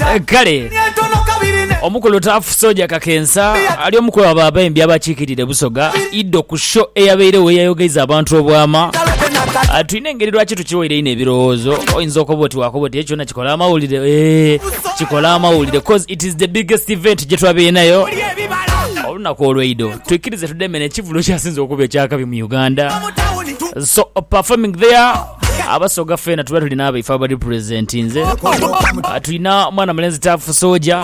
Eh, Kale omukulu Tafu Soja Kakensa ali omu ku abo abaimbi abakiikirire Busoga Ido ku sho eyabairewo eyayogeiza abantu obwama. Ah, Tulina engeri lwaki tukiwaire inho ebirowoozo. Oyinza okoba oti wakoba oti ekyona kikola amawulire. Eh, kikola amawulire cause it is the biggest event gye twabeinayo olunaku olweido. Twikirize tudeme n'ekivulu ekyasinze okuba ekyakabi mu Uganda. So performing there Abasoga fena tuba tulina abaife abali present nze tulina mwana mulenzi tafu soja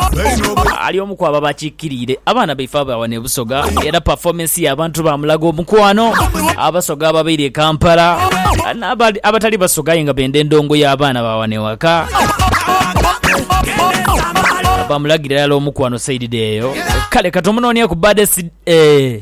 ali omu kwabo abakikiriire abaana baife abawa ne busoga era performance ya abantu bamulaga omukwano abasoga ababaire e kampala n'abali- abatali basoga aye nga benda endongo y'abaana bawa ne waka bamulagira yala omukwano saidide eyo kale katomunonia ku baddest eh.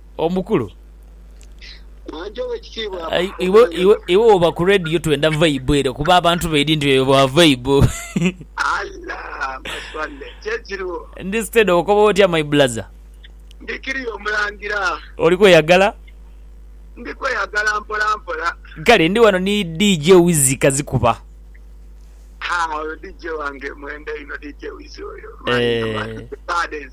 Omukulu. Anti owekitiibwa akomawo. Iwe woba ku radio twenda vibe ere kuba abantu baidhi nti oyo wa vibe. Allah maswalle kyekiriwo. Ndi steady okoba otya my blaza. Ndi kiriya omulangira. Oli kweyagala? Ndi kweyagala mpola mpola. Kale ndi wano ni DJ Wizzy Kazikuba. Haa oyo DJ wange mwenda inho DJ Wizzy oyo. Eeh.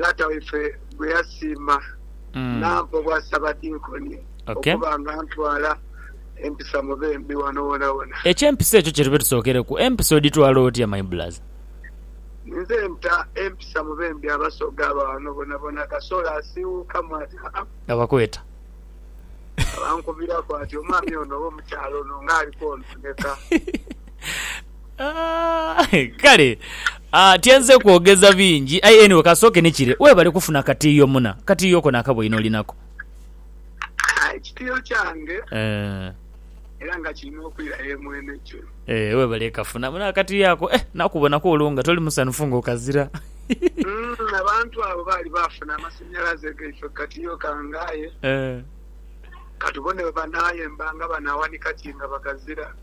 Lata waife gwe yasiima n'ampa obwasabadinkoni okuba nga ntwala empisa mu bembi wano wonawona. Eky'empisa ekyo kye tube tusookereku. Empisa odhitwala otya my blaza? Nze nta empisa mu bembi Abasoga aba wano bonabona. Kasolo asiiwuukamu ati, Ha-a. Abakweta. Abankubiraku ati, Omwami ono oba omukyala ono ng'ali kwonooneka. Kale tyenze kwogeza bingi aye anyway kansooke ni kire, weebale kufuna katiiyo muna. Katiiyo ko naaka bwoine olinako? Ekitiiyo kyange era nga kiri n'okwira ye Mwenejuru. Weebale kafuna muna akatiiyo ako. Eh nakubonaku olwo nga toli musanhufu nga okazira. Abantu abo baali baafuna amasanhalaze gaife ku katiiyo kange aye katubone bwe banaayemba nga banaawanika ki nga bakazira.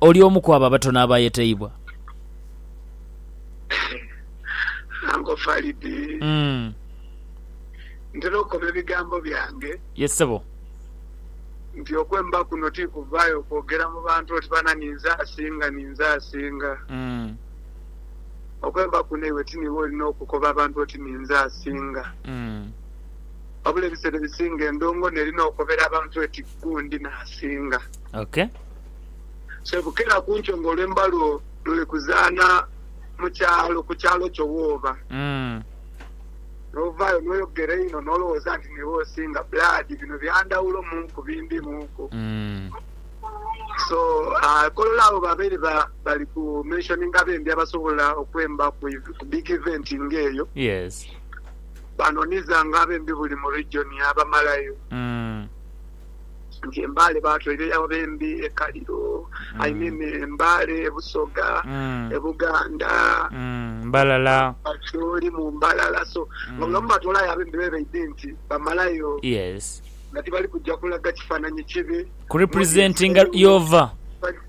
Oli omu ku abo abatono abaayeteibwa? Anko Falidi, ntera okoba ebigambo byange. Ye ssebo. Nti okwemba kuno ti kuvaayo kwogera mu bantu oti bana ninze asinga, ninze asinga. Okwemba kuno iwe ti niiwe olina okukoba abantu oti ninze asinga. Wabula ebiseera ebisinga endongo n'eri n'okobera abantu eti gundi n'asinga. Sebukera ku nkyo ng'olwemba lwo luli kuzaana mu kyalo, ku kyalo kyo wooba, n'ovaayo n'oyogera einho n'olowooza nti niiwe osinga, blood, bino bya ndhawulo mu ku bi ndi mu ku. So, kolola abo babaire bali ku mentioninga abembi abasobola okwemba ku big event ng'eyo. Baanonizanga abembi buli mu region yaabamalayo. Nti embaale baatwere ya Bembi e Kaliro, I mean embaale e Busoga, e Buganda, Mbalala, Acholi mu Mbalala so nga buli wamu batwolayo Abembi be baidhe nti bamalayo nga tibali kuja kulaga kifananhi kibi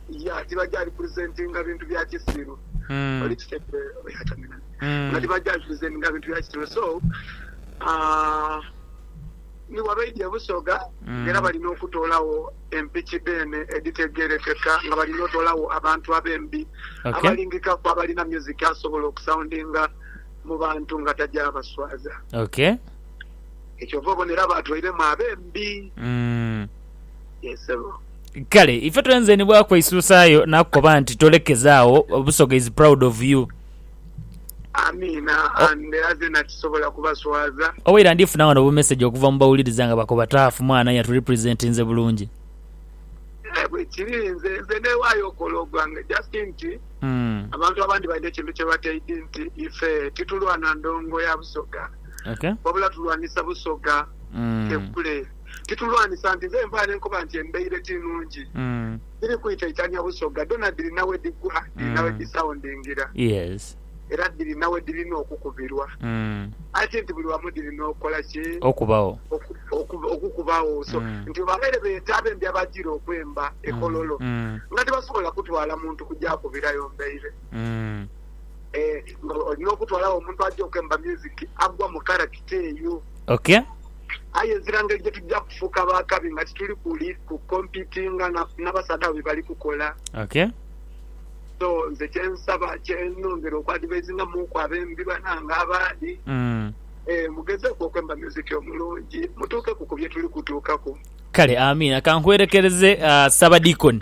yeah tibaja representinga bintu bya kisiru oli kitegeera nga tibaja representinga bintu bya kisiru so aah. Ni bwa baidha e Busoga nga era bali n'okutoolagho empiki dheene edhitegeerekeka nga bali n'otoolagho abantu abembi abalingikaku abalina myuziki asobola okusaundinga mu bantu nga tajaabaswaza. Ky'ova obona era baatwairemu abembi. Yee ssebo. Kale ife twenze ni bwakweisuusaayo naakukoba nti tolekeza agho, Busoga is proud of you. Amiina. And era zena tisobola kubaswaza. Owaira ndifuna wano bu message okuva mu bawuliriza nga bakoba Taaf mwana yatu representinze bulungi. Eeh bwekiri nze nze newayo okola ogwange just nti abantu abandi balina ekintu kyebataidi nti ife titulwana ndongo ya busoga wabula tulwanisa busoga ffe kule titulwanisa nti nze nvayo nenkoba nti embeire tinungi. Dhiri kwitaitania busoga, dhona dhirina we dhigwa, dhirina we dhisaundingira, era dhirina we dhirina okukubirwa. Aye ti nti buli wamu dhirina okukola ki? Okubagho. Okukubagho. So, nti bwe babaire beeta abembi abajiire okwemba e Kololo, nga tibasobola kutwala muntu kuja kubirayo mbaire. Eeh, nga olina okutwalagho omuntu aja okwemba music, agwa mu karakita eyo. Ok. Aye ezira ngeri gye tuja kufuuka b'akabi nga tituli kuli ku kompitinga na basaadha abo bye bali kukola. Okay. So, nze kye nsaba, kye nongera okuadvaizingamuuku abembi banange abandi, ee, mugezeeku okwemba myuziki omulungi, mutuukeku ku bye tuli kutuukaku. Kale, amiina. Ka nkwelekereze, Ssaabadiikoni.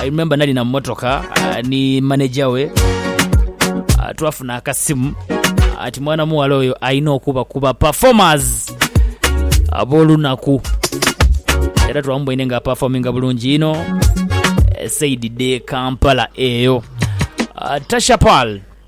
I remember nali na motoka ah, ni manager we Ah, twafuna akasimu ati mwana muwala oyo alina okuba kuba performers ab'olunaku era twamuboine nga aperforminga bulungi ino esaidi de kampala eyo Ah, tasha pal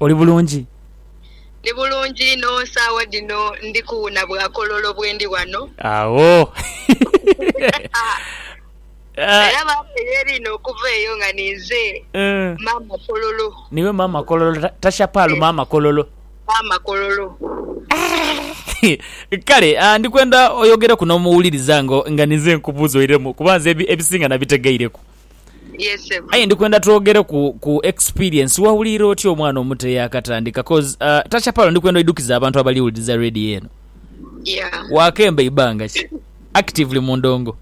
Oli bulungi? Ndi bulungi inho. Saagha dhino ndi kuwuna bwakololo bwendi ghano. Agho. Era baaba yeeriina okuva eyo nga ninze Maama Kololo. Niiwe Maama Kololo. Tasha Paul Maama Kololo. Maama Kololo. Kale ndi kwenda oyogereku n'omuwuliriza nga ninze nkubuuza oiremu kuba nze ebisinga nabitegeireku. Aye ndikwenda twogere ku ku experience. Wawulira otya omwana omuto eyakatandika cause uh, Tasha Palo ndikwenda oidukiza abantu abali wuliriza radio eno. Yeah. Wakemba ibanga ki? Actively mu ndongo.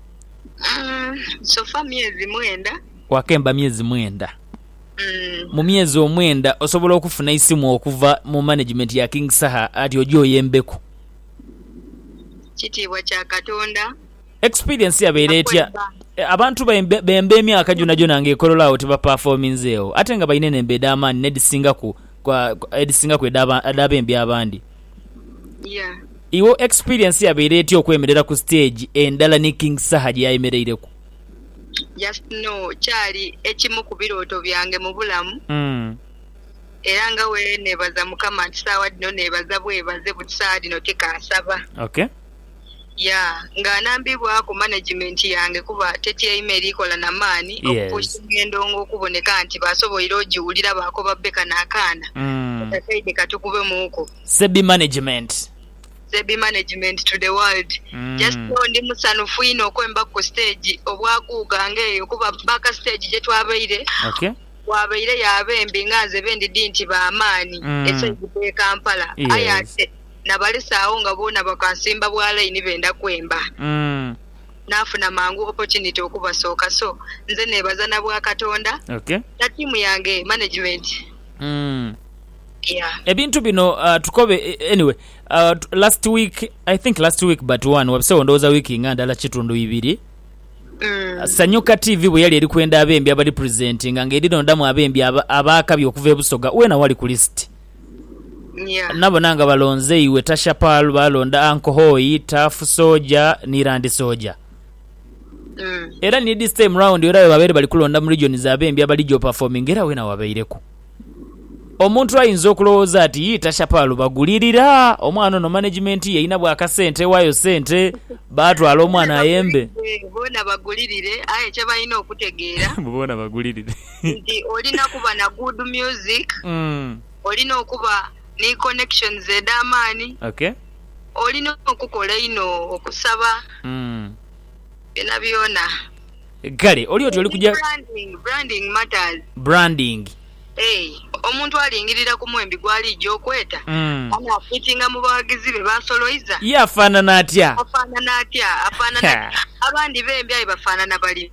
Mm, so far myezi mwenda. Wakemba myezi mwenda. Mm. Mu myezi omwenda osobola okufuna isimu okuva mu management ya King Saha ati oje oyembeku. Kitiibwa kya Katonda. Experience yabaire etya? Abantu bemba emyaka gyonhagyonha nga ekololo agho tibapafominzeegho ate nga balina enemba edhamaani n'edhisingaku edhisingaku edh'abembi abandi. Iwe experience yabaire etya okwemerera ku stage endala ni King Saha gye yayemereireku? Just know kyali ekimu ku birooto byange mu bulamu era nga bweneebaza Mukama nti saagha dhino neebaza bwebaze but saagha dhino tikaasaba. ya nga anambibwaku management yange kuba tetyaime eri kola na maani okupuushinga endongo okuboneka nti basoboire ogiwulira baakoba bbe kano akaana kata saidi katikubemuuku. Sebbi Management. Sebbi Management to the world. Just know ndi musanhufu inho okwembaku ku stage obwa Guuga nga eyo kuba back stage gye twabaire waabaireyo abembi nga nze be ndidhi nti ba maani esaidi dh'e Kampala aye ate nabalesa agho nga boona bakansimba bwa line benda kwemba nafuna mangu opportunity okubasooka so nze nebaza nabwa katonda na team yange management yeah. Ebintu bino uh, tukobe anyway uh, last week I think last week but one wabisewo ndowoza wiki nga ndala kitundu ibiri mm. Sanyuka TV bwe yali eri kwenda abembi abali presentinga nga eri nodamu abembi abaakabi okuva ebusoga wena wali ku list Nya. Nabona nga balonze iwe Tashapal, baalonda Ankohoi, Tafu Soja, ni Randi Soja. Mm. Era ni this time round era bwebabaire bali kulonda mu regions abembi abali gy'operforminga era weena wabaireku. Omuntu ayinza okulowooza ati yii Tashapal bagulirira omwana ono management ye erinabu akasente ewaayo ssente baatwala omwana Boona ayembe. bagulirire, boona bagulirire aye kyebalina okutegeera. Mbu boona bagulirire. nti olina kuba na good music, olina okuba ni connections edh'amaani, olina okukola einho, okusaba, byonabyona. Kale oli oti oli kuja. Branding, branding matters. Branding. Eeh, omuntu alingirira ku mwembi gw'aliija okweta, anaafitinga mu baghagizi be b'asoloiza? Ye afaanana atya? Afaanana atya? Afaanana atya? Abandi bembi aye bafaanana bali.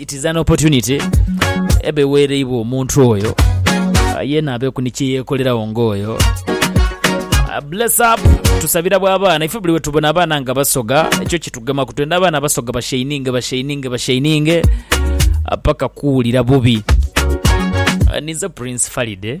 It is an opportunity eba eweereibwa omuntu oyo ah, yeena abeeku ni kye yeekoleragho ng'oyo. Ah, Bless up tusabira bwa abaana ife buli wetubona abaana nga basoga ekyo kitugema ku twenda abaana basoga bashaininge bashaininge bashaininge ah, paka kuwulira bubi Ah, ninze prince falide